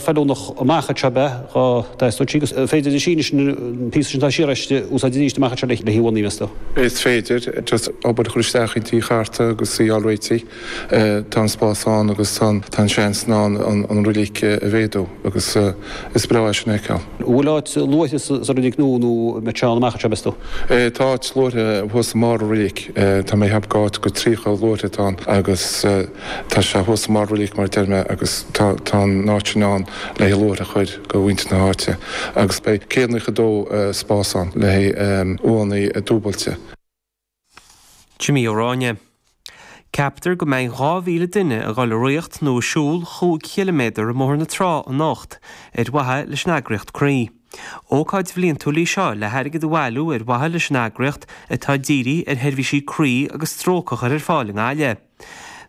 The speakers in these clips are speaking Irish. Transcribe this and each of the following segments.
feiliúnach amach anseo má bhíonn gá á n-aistriú, agus is féidir an Sínis, an píosa sin atá siar aisti, a úsáid arís amach anseo le hí Uí Mheisto. Is féidir just obair a chur isteach inti i gceart agus already tá an spás ann agus tá an seans ann an reilig a mhéadú agus is breá é sin a fheiceáil. An bhfuil áit luaithre sa reilig nua nó an mbeidh sé ann amach anseo, meas tú? Tá áit luaithre thuas i mbarr an reilig, tá mé ag ceapadh go áit go tríocha luaithre atá ann agus. Tá sé thuas i mbarr an reilig mar a deir mé agus tá tá an áit sin ann le haghaidh luaithre a chur do mhuintir na háite agus beidh céad naocha a dó spás ann le haghaidh uaigheanna dúbailte. Jimí Ó Ráinne. Ceaptar go mbeidh dhá mhíle duine ag dul ag rith nó ag siúl chúig chiliméadar i mBóthar na Trá anocht ar mhaithe leis an eagraíocht Croí. Ócáid bhliantúil í seo le hairgead a bhailiú ar mhaithe leis an eagraíocht atá ag díriú ar sheirbhísí croí agus stróc a chur ar fáil i nGaillimh.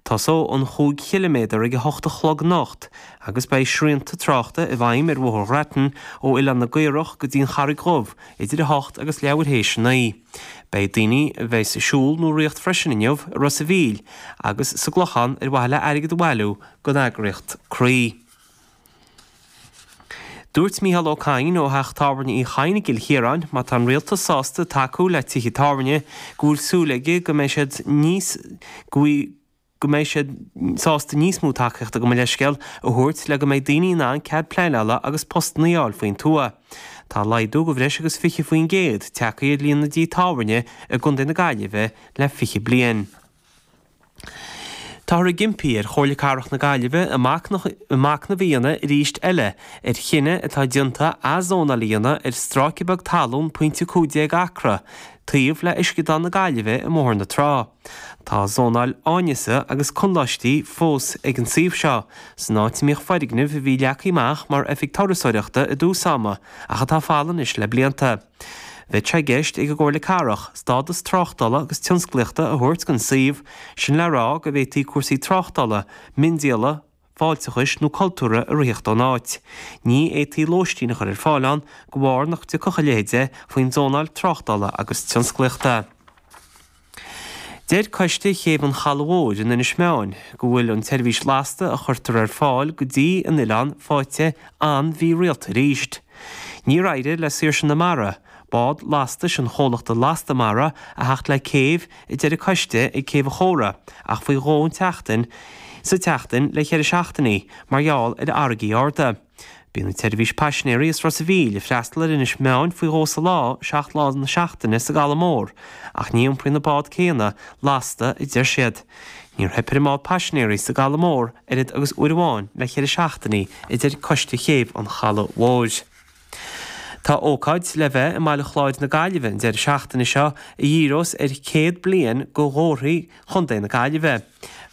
Tosóidh an chúig chiliméadar ag a hocht a chlog anocht agus beidh srianta tráchta i bhfeidhm ar Bhóthar Ghrattan ó Oileán na gCaorach go dtí an Charraig Dhubh idir 08:00 agus leathuair tar éis a naoi. Beidh daoine amuigh ag siúl nó ag rith freisin inniu i Ros a' Mhíl agus sa gClochán ar mhaithe le hairgead a bhailiú don eagraíocht Croí. Dúirt Micheál Ó Cadhain ó Theach Tábhairne Uí Chadhain i gCill Chiaráin, má tá an Rialtas sásta tacú le tithe tábhairne go bhfuil súil aige go mbeidh siad níos go mbeidh siad sásta níos mó tacaíochta gabh mo leithscéal a thabhairt le go mbeidh daoine in ann cead pleanála agus postanna a fháil faoin tuath. Tá laghdú de bhreis agus 20% tagtha ar líon na dtithe tábhairne i gContae na Gaillimhe le 20 bliain. Táthar ag impí ar Chomhairle Cathrach na Gaillimhe athmhachnamh a dhéanamh arís eile ar chinneadh atá déanta athzónáil a dhéanamh ar stráice beag talún, pointe 15 acra, taobh le Uisceadán na Gaillimhe i mBóthar na Trá. Tá zónáil áineasa agus conláistí fós ag an suíomh seo, san áit a mbíodh foirgneamh a bhí leagtha amach mar oifig turasóireachta i dtús ama ach atá folamh anois le blianta. Bheadh sé i gceist ag an gComhairle Cathrach stádas tráchtála agus tionsclaíochta a thabhairt don suíomh, sin le rá go bhféadfaí cúrsaí tráchtála, miondíola, fáilteachais nó cultúrtha a reáchtáil ón áit. Ní fhéadfaí lóistín a chur ar fáil ann de bharr nach dtiocfadh a leithéid faoin zónáil tráchtála agus tionsclaíochta. Deir Coiste Chéibh an Chalaidh Mhóir in Inis Meáin go bhfuil an tseirbhís lasta a chuirtear ar fáil go dtí an oileán faighte an-mhírialta arís. Níor éirigh le Saoirse na Mara, bád lastais an chomhlachta Lasta Mara, a theacht le céibh, a deir an coiste, ag Céibh an Chóra ach faoi dhó sa tseachtain sa tseachtain le ceithre seachtainí mar gheall ar fharraigí arda. Bíonn an tseirbhís paisinéirí as Ros a Mhíl ag freastal ar Inis Meáin faoi dhó sa lá, seacht lá na seachtaine sa gCaladh Mór, ach ní iompraíonn an bád céanna lasta, a deir siad. Níor theip ar an mbád paisinéirí sa gCaladh Mór oiread agus uair amháin le ceithre seachtainí, a deir Coiste Chéibh an Chalaigh Mhóir. Tá ócáid le bheith i mBaile Chláir na Gaillimhe an deireadh seachtaine seo a dhíreos ar 100 bliain de Ghlórthaí Chontae na Gaillimhe.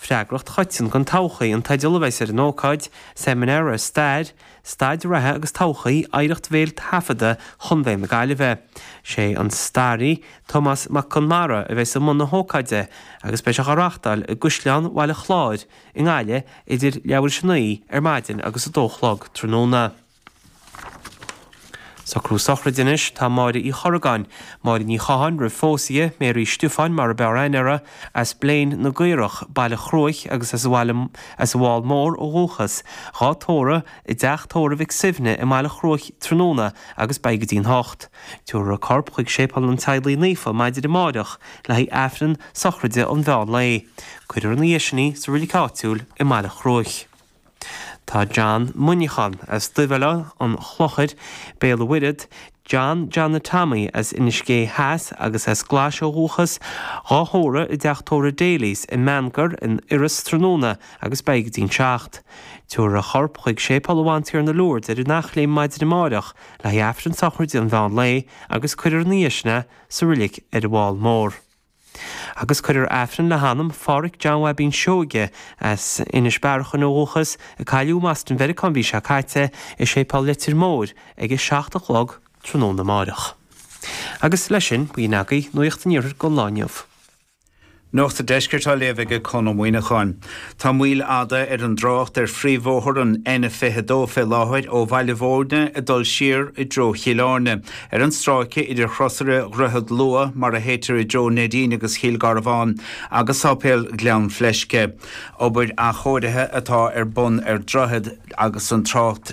Freagracht Choiteann don Todhchaí an teideal a bheas ar an ócáid, seimineár ar stair, staid reatha agus todhchaí oidhreacht bhéil taifeadta Chontae na Gaillimhe. Is é an staraí Tomás Mac Conmara a bheas i mbun na hócáide agus beidh sé á reáchtáil i gCaisleán Bhaile Chláir i nGaillimh idir leathuair tar éis a naoi ar maidin agus a dó a chlog tráthnóna. Socrú sochraide anois, tá Máire Uí Chorragáin, Máire Ní Chatháin roimh phósadh di, Mary Stiofáin mar ab fhearr aithne uirthi, as Bléin na gCaorach, Baile Chruaich agus as an bhFál Mór ó dhúchas, dhá tórramh i dteach tórraimh Mhic Suibhne i mBaile Chruaich tráthnóna agus beidh go dtí'n hocht. Tiúrfar a corp chuig Séipéal an Teaghlaigh Naofa maidin amáireach le haghaidh Aifreann sochraide an mheán lae. Cuirfear ina dhiaidh sin í sa roilic áitiúil i mBaile Chruaich. Tá John Muineachán as Duibhoileán an Chlochair, Béal an Mhuirthead, John Johnny Tommy as Inis Gé Theas agus as Glais ó dhúchas, dhá thórramh i dteach tórraimh Daly's i mBeannchar in Iorras tráthnóna agus beidh go dtí'n seacht. Tiubharfar a chorp chuig Séipéal Bhantiarna Lourdes ar an Eachléim maidin amáireach le haghaidh Aifreann sochraide an mheán lae agus cuirfear ina dhiaidh sin é sa roilic ar an bhFál Mór. agus cuirfear Aifreann le hanam Pháraic John Bhaibín Seoige, as Inis Bearachain ó dhúchas, a cailleadh i mBoston Mheiriceá an mhí seo caite, i Séipéal Leitir Móir ag a seacht a chlog tráthnóna amárach. Agus leis sin, b'in agaibh, Nuacht an Iarthair don lá inniu. Nuacht an Deiscirt á léamh aige Conn Ó Muíneacháin. Tá moill fhada ar an dtrácht ar phríomhbhóthar an N22 fé láthair ó Bhaile Bhúirne ag dul siar i dtreo Chill Áirne. Ar an stráice idir Chrosaire Dhroichead Lua, mar a théitear i dtreo Neidín agus Chill Gharbháin, agus Sáipéal Ghleann Fleisce, obair athchóirithe atá ar bun ar droichead agus an trácht